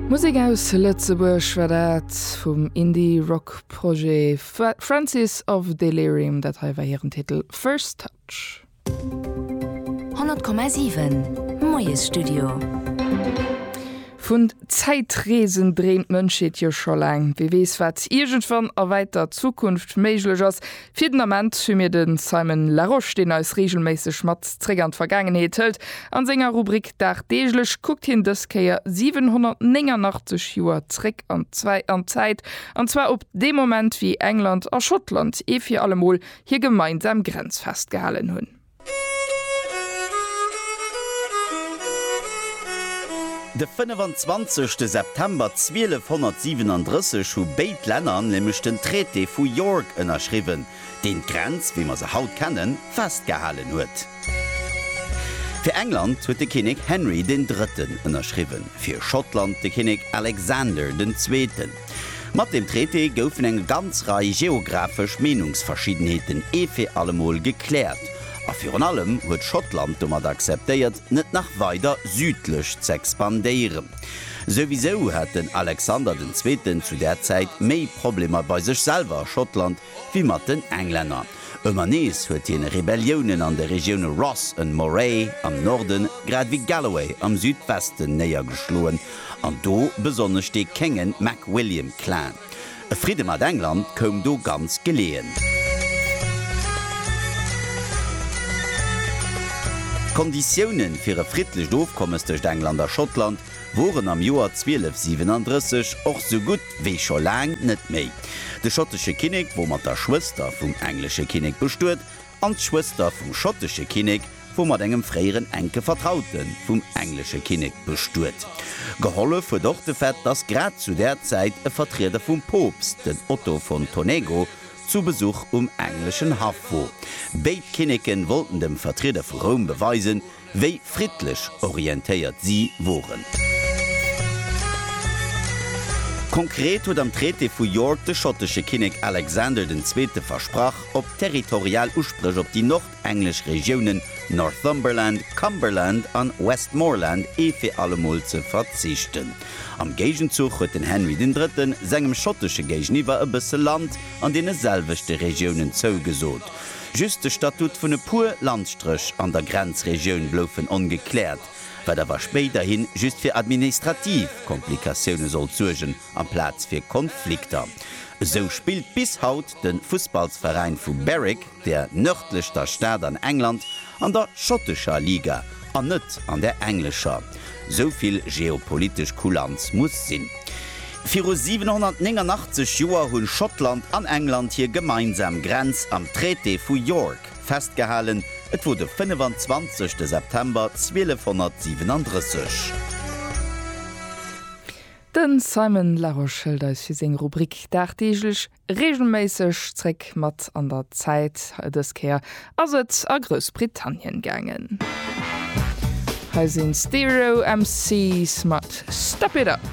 Musek aus Lëtzebuerg war dat vum Indie-Rock-Projet Francis of Delirium. Dat hei war hiren Titel First Touch. 100,7 Moiesstudio. Vun Zäitreesen dreemt d'Mënschheet jo scho laang. Wie weess, wat iergendwann a wäiter Zukunft méiglech ass? Fir den Ament hu mir de Simon Larosche, deen eis reegelméisseg mat zréck an d'Vergaangenheet hëlt. An senger Rubrik Dagdeeglech kuckt hien dës Kéier 789 Joer zréck an d'Zäit, an zwar op dee Moment, wéi England a Schottland ee fir alle Mol hir gemeinsam Grenz festgehalen hunn. De 25 September 1237 hu béid Länner nämlech den Traité vu York ënnerschriwwen, deen d'Grenz, wéi mer se haut kennen, festgehalen huet. Fir England huet de Kinnek Henry den Drëtten ënnerschriwwen, fir Schottland de Kinnek Alexander den Zweeten. Mat deem Traité goufen eng ganz Rei geographesch Meenungsverschiddenheeten ee fir allemol gekläert, a virun allem huet Schottland domat akzeptéiert, net nach weider südlech z'expandéieren. Souwisou hat den Alexander den Zweeten zu där Zäit méi Problemer bei sech selwer a Schottland, wéi mat den Englänner. Ëmmer nees huet hien Rebelliounen an de Regioune Ross and Moray am Norden grad ewéi Galloway am Südwesten néiergeschloen, an do besonnesch de Kéngen Mac William Clan. E Fridde mat England koum do ganz geleeën. D'Konditiounen fir e friddlecht Ofkommes tëscht England a Schottland woren am Joer 1237 och sou gutt wéi scho laang net méi. De schottesche Kinnek wor mat der Schwëster vum englesche Kinnek bestuet, an d'Schwëster vum schottesche Kinnek wor mat engem fréieren enke Vertraute vum englesche Kinnek bestuet. Gehollef huet och de Fait, datt grad zu där Zäit e Vertrieder vum Poopst, den Otto von Tonego, zu Besuch um engleschen Haff wor. Béid Kinneke wollten dem Vertrieder vu Roum beweisen, wéi friddlech orientéiert si woren. Konkret huet am Traité vu York de schottesche Kinnek Alexander den Zweete versprach, op territorial Uspréch op déi nordenglesch Regiounen Northumberland, Cumberland an Westmorland ee fir allemol ze verzichten. Am Géigenzuch huet den Henry den Drëtten sengem schottesche Géigeniwwer e bësse Land an deene selwechte Regiounen zougesot. Just de Statut vun e puer Landstréch an der Grenzregioun bloufen ongekläert, wat awer spéiderhi just fir administrativ Komplikatioune sollt suergen amplaz fir Konflikter. Esou spillt bis haut de Fussballsveräin vu Berwick, der nërdlechster Stad an England, an der schottescher Liga, An net an der englescher. Sou vill geopolitesch Kulanz muss sinn. Viru 789 Joer hunn Schottland an England hir gemeinsam Grenz am Traité vu York festgehalen, et wor de 25 September 1237. Den Simon Larosche hëlt eis fir seng Rubrik dagdeeglech Reegelméisseg zréck mat an der Zäit, dës Kéier ass et a Groussbritannien gaangen. Hei sinn Stereo MC's mat Step It Up.